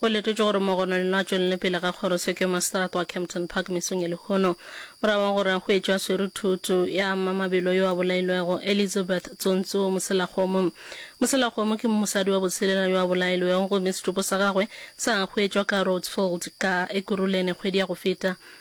Go letetšwe gore mogononeno a tšwelele pele ga kgorotseko ya maseterata wa Kempton Park mesong ya lehono. Morago ga gore a hwetšwe a swere thoto, ya ama mabelo yo a bolailwego, Elizabeth Tsontso Moselakgomo. Moselakgomo ke mosadi wa botshelela yo a bolailwego gomme setopo sa gagwe sa hwetšwa ka Rhodes Fold ka Ekurhuleni kgwedi ya go feta.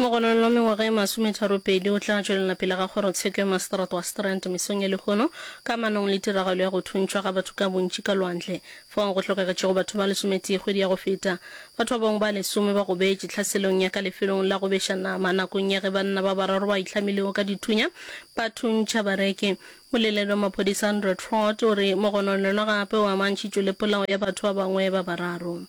Mogononong wa mengwaga e masometharopedi o tla tšwelela pele ga kgorotsheko ya maseterata wa Strand mesong ya lehono ka manong le tiragalo ya go thuntšhwa ga batho ka bontši ka lwandle fao go hlokagetšego batho ba lesometee kgwedi ya go feta. Batho ba bangwe ba lesome ba gobetše tlhaselong ya ka lefelong la go beša nama nakong ya ge banna ba bararo ba itlhamilego ka dithunya ba thuntšha bareki. Moleledi wa maphodisa Andrew Trott o re mogonono yona gape o amantšhitšwe le polao ya batho ba bangwe ba bararo.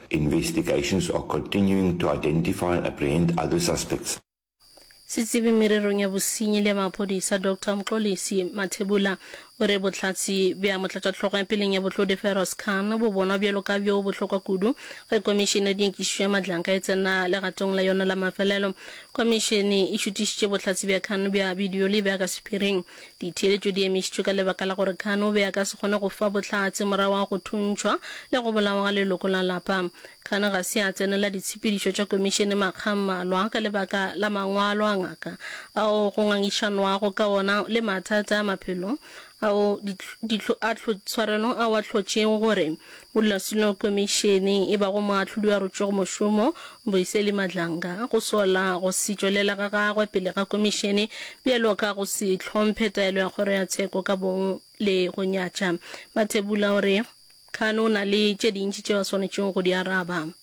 Investigations are continuing to identify and apprehend other suspects. Setsebi mererong ya bosenyi le ya maphodisa Doctor Mxolisi Mathebula o re bohlatse bja motlatšahlogo ya peleng ya Bohlodi Feroz Khan bo bonwa bjalo ka bjo bohlokwa kudu ge komišene ya dinyakišišo ya Madlanka e tsena legatong la yona la mafelelo. Komišene e šutišitše bohlatse bja Khan bja bidio le bja ka sephiring. Ditheeletšo di emišitšwe ka lebaka la gore Khan o be a ka se kgone go fa bohlatse morago ga go thuntšhwa le go bolawa ga leloko la lapa. Khan ga se a tsenela ditshepedišo tša komišene makga a mmalwa ka lebaka la mangwalo a ngaka ao go ngangišanwago ka ona le mathata a maphelo ao a tshwarelo ao a hlotšego gore Modulasetulo Komišene e bago Moahlodi wa Rutšegomošomo, Boiseli Madlanga, go sola go se tšwelela ga gagwe pele ga Komišene bjalo ka go se hlomphe taelo ya Kgoro ya Tsheko ka bong le go nyatša Mathebula o re Khan o na le tše dintši tšeo a swanetšego go di araba.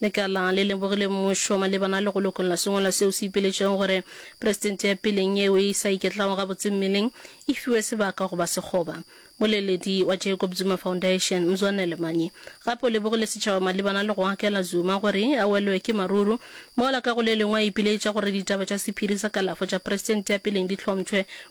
Lekala le lebogile mmušo malebana le go lokolla sengwalwa seo se ipeletšego gore Presidente ya peleng yeo e sa iketlago gabotse mmeleng e fiwe sebaka go ba sekgoba. Moleledi wa Jacob Zuma Foundation, Mzwanele Manyi, gape o lebogile setšhaba malebana le go akela Zuma gore a welwe ke maruru, mola ka go le lengwe a ipiletša gore ditaba tša sephiri sa kalafo tša Presidente ya peleng di hlompšhwe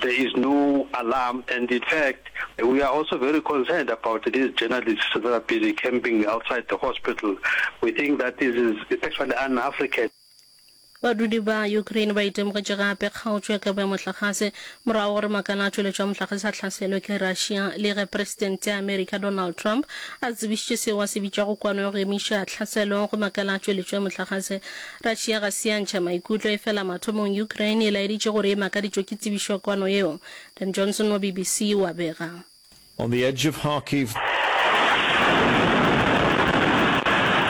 There is no alarm and in fact we are also very concerned about these journalists that are busy camping outside the hospital. We think that this is actually un-African. Badudi ba Ukraine ba itemogetše gape kgaotšo ya kabo ya mohlagase morago gore makala a tšweletšo ya mohlagase a hlaselwe ke Russia le ge Presidente ya America Donald Trump a tsebišitše seo a se bitšago kwano ya go emiša tlhaselo go makala a tšweletšo ya mohlagase Kratšhe ya ga Siantšha maikutlo efela mathomong Ukraine e laeditše gore e makaditšwe ke tsebišo ya kwano yeo. Dan Johnson wa BBC o a bega. On the edge of Kharkiv,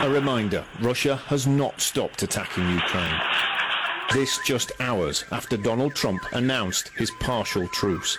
a reminder Russia has not stopped attacking Ukraine. This just hours after Donald Trump announced his partial truce.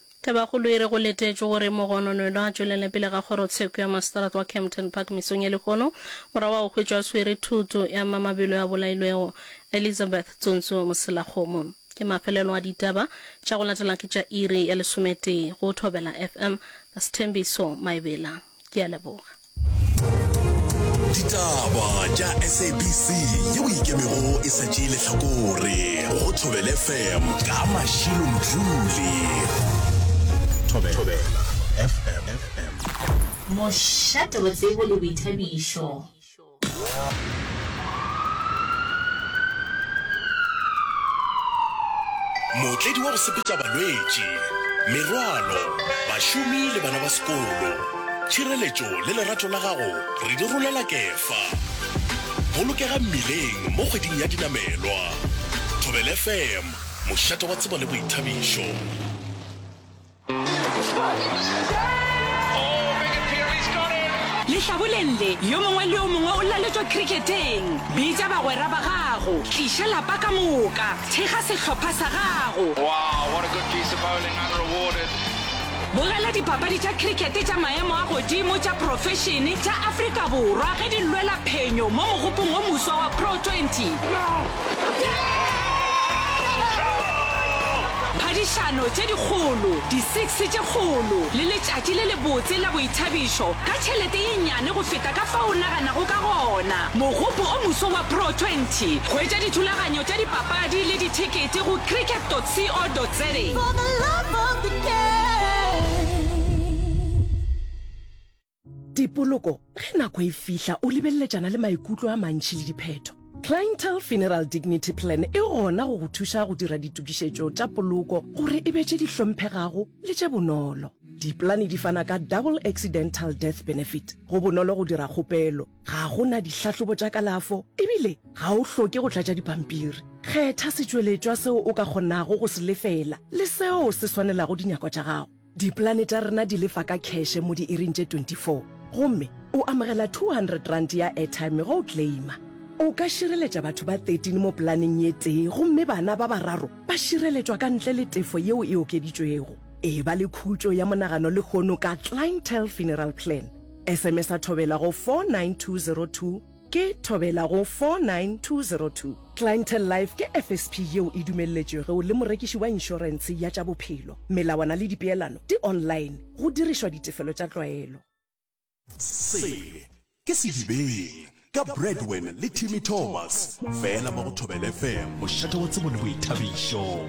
Tabakgolo e re go letetšwe gore Mogononwelo a tšwelele pele ga kgorotsheko ya maseterata wa Kempton Park mesong ye lehono, morago ga go hwetšwa a swere thoto ya mma mabelo ya bolailwego, Elizabeth Tsunzu Moselakgomo. Ke mafelelo a ditaba, tša go latela ke tša iri ya lesometee go Thobela FM. Ka Sethembiso Maebela. Ke a leboga. ditaba tša sabc ye o ikemego e sa tšee lehlakore go thobele fm ka mašilo mdlule thobela fm mošate wa tsebo le boithabišo mootledi wa go sepetša balwetši merwalo bašomi le bana ba sekolo Tšhireletšo le lerato la gago re di rolela Kefa. Bolokega mmileng mo kgweding ya dinamelwa. Thobela FM, mošate wa tsebo le boithabišo. Lehlaboleng le, yo mongwe le yo mongwe o laletšwa kriketeng. Bitša bagwera ba gago. Tliša lapa ka moka. Thekga sehlopha sa gago. Wow, what a good piece of bowling, unrewarded. Bogela dipapadi tša cricket tša maemo a godimo tša profešene tša Afrika Borwa ge di lwela phenyo mo mogopong o moswa wa Pro Twenty. Phadišano tše dikgolo, di six tše kgolo le letšatši le lebotse la boithabišo ka tšhelete ye nnyane go feta ka fao o naganago ka gona. Mogopo o moswa wa Pro Twenty. Hwetša dithulaganyo tša dipapadi le dithekete go cricket.co.za. Dipoloko ge nako e fihla o lebeleletšana le maikutlo a mantši le diphetho. Clientele Funeral Dignity Plan e gona go go thuša go dira ditokišetšo tša poloko gore e be tše di hlomphegago le tše bonolo. Dipolane di fana ka Double Accidental Death Benefit. Go bonolo go dira kgopelo. Ga go na dihlahlobo tša kalafo e bile ga o hloke go tlatša dipampiri. Kgetha setšweletšwa seo o ka kgonago go se lefela le seo se swanelago dinyakwa tša gago. Dipolane tša rena di lefa ka kheshe mo diiring tše 24 gomme o amogela R200 ya airtime ge o claima. O ka šireletša batho ba 13 mo polaneng ye tee gomme bana ba bararo ba šireletšwa ka ntle le tefo yeo e okeditšwego. Eba le khutšo ya monagano lehono ka Clientele Funeral Plan. Sms-a Thobela go 49202 ke Thobela go 49202. Clientele Life ke FSP yeo e dumelletšwego le morekiši wa inšorense ya tša bophelo. Melawana le dipeelano di online, go dirišwa ditefelo tša tlwaelo. Se ke Sedibeng ka Bradwen le Timmy Thomas, fela mo go Thobela FM, mošate wa tsebo le boithabišo.